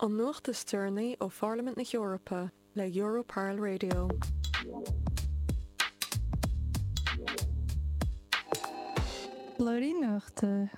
An nuacht is deireanaí ó Pharlaimint na hEorpa le Europarl Radio. Blúirí Nuachta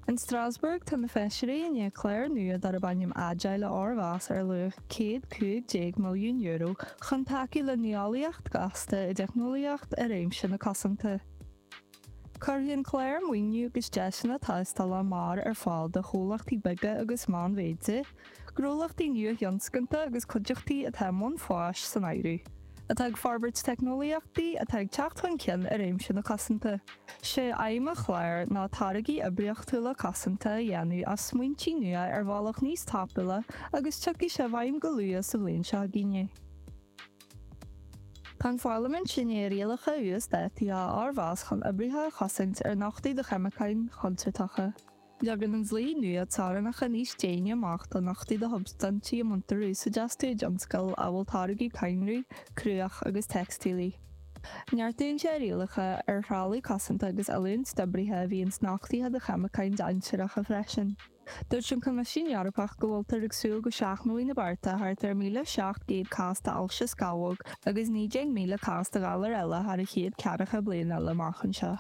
In Strasbourg, tá na feisirí i ndiaidh clár nua darb ainm Agile a fhormheas ar luach €115 milliún chun tacú le nuálaíocht ghasta i dteicneolaíocht i réimse na cosanta. Cuirfidh an clár maoiniú agus deiseanna tástála mear ar fáil do chomhlachtaí beaga agus meánmhéide, gnólachtaí nua-thionscanta agus cuideachtaí atá i mbun fáis san áireamh, atá ag forbairt teicneolaíochtaí atá ag teacht chun cinn i réimse na cosanta. 'Sé aidhm an chláir ná táirgí oibríochtúla cosanta a dhéanamh as smaointí nua ar bhealach níos tapúla agus tiocfaidh sé i bhfeidhm go luath sa bhliain seo chugainn. Tá an Pharlaimint i ndiaidh rialacha uasdátaithe a fhormheas chun oibrithe a chosaint ar nochtadh do cheimiceáin chontúirteacha. Leagann an dlí nua teorainneacha níos déine amach do nochtadh do shubstaintí a mbaintear úsáid astu i dtionscail amhail táirgeadh cadhnraí, cruach agus teicstílí. Neartaíonn sé rialacha ar threalamh cosanta agus oiliúint d'oibrithe a bhíonn nochtaithe do cheimiceáin dainséaracha freisin. Dúirt an Coimisiún Eorpach go bhfuiltear ag súil go seachnóidh na bearta thart ar 1,700 cás d'ailse scamhóg agus 19,000 cás de ghalair eile thar an chéad ceathracha bliain eile amach anseo.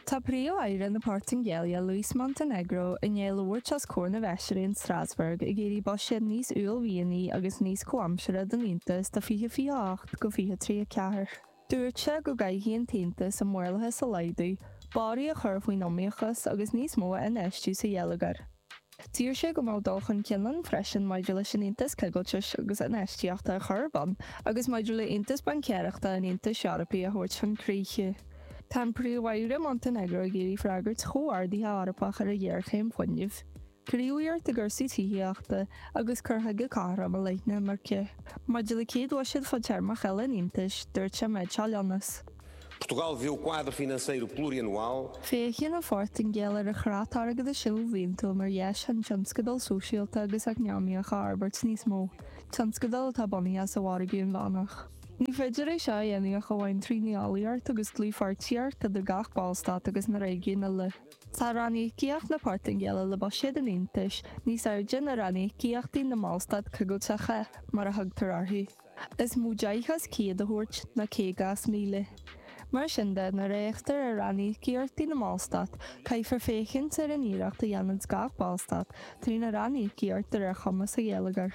Tá Príomh-Aire na Portaingéile, Luís Montenegro, i ndiaidh labhairt os comhair na bhfeisirí in Strasbourg ag iarraidh buiséad níos uaillmhianaí agus níos comhaimseartha don Aontas do 2028 go 2034. Dúirt sé go gcaithfidh an tAontas an maorlathas a laghdú, borradh a chur faoin iomaíochas agus níos mó a infheistiú sa gheilleagar. D'iarr sé go mbeadh dul chun cinn ann freisin maidir leis an Aontas Coigiltis agus Infheistíochta a chur ar bun agus maidir le hAontas Baincéireachta an Aontais Eorpaigh a thabhairt chun críche. Tá an Príomh-Aire Montenegro ag iarraidh freagairt chomhordaithe Eorpach ar an ghéarchéim fuinnimh. Gníomhaíocht i gcúrsaí tithíochta agus cur chuige cothrom i leith na himirce. Maidir le céad bhuiséad fadtéarmach eile an Aontais, dúirt sé an méid seo a leanas. Portugal vê o quadro financeiro plurianual. Féachann an Phortaingéil ar an chreat airgeadais ilbhliantúil mar dheis chun tionscadail sóisialta agus eacnamaíocha a fhorbairt níos mó, tionscadail atá bunaithe sa mhargadh inmheánach. Ní féidir é seo a dhéanamh ach amháin trí nuálaíocht agus dlúthpháirtíocht idir gach Ballstát agus na réigiúin uile. Tá ranníocaíocht na Portaingéile le buiséad an Aontais níos airde ná ranníocaíochtaí na mBallstát coigilteacha, mar a thugtar orthu, is mó deich as céad a thabhairt ná caoga as míle. Mar sin de, nuair a fhéachtar ar ranníocaíochtaí na mBallstát, caithfear féachaint ar an iarracht a dhéananns gach Ballstát trína ranníocaíocht de réir chumas a gheilleagair.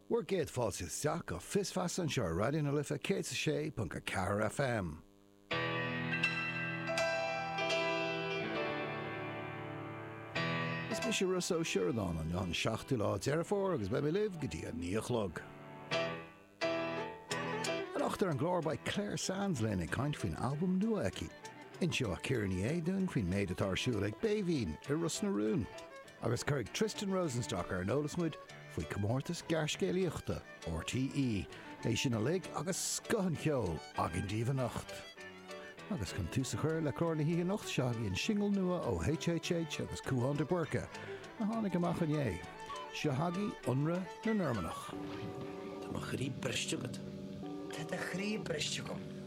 Bhur gcéad fáilte isteach go Fios Feasa anseo ar Raidió na Life 106.4 FM. Is mise Ros Ó Sioradáin an an seachtú lá Deireadh Fómhair agus beidh mé libh go dtí a naoi a chlog. Anocht ar an gclár beidh Clare Sands linn ag caint faoin albam nua aici. Inseoidh Ciara Ní É dúinn faoin méid atá ar siúl ag Béibhín i Ros na Rún. agus cuirfidh Tristan Rosenstock ar an eolas muid faoi chomórtas gearrscéalaíochta RTÉ, é sin uilig agus scoth an cheoil againn daoibh anocht. Agus chun tús a chur le clár na hoíche anocht, seo chugaibh an singil nua ó HHH agus Cúán de Búrca, a tháinig amach inné. Seo chugaibh Ionradh na Normannach. Tá mo chroí briste agat. Tá do chroí briste agam.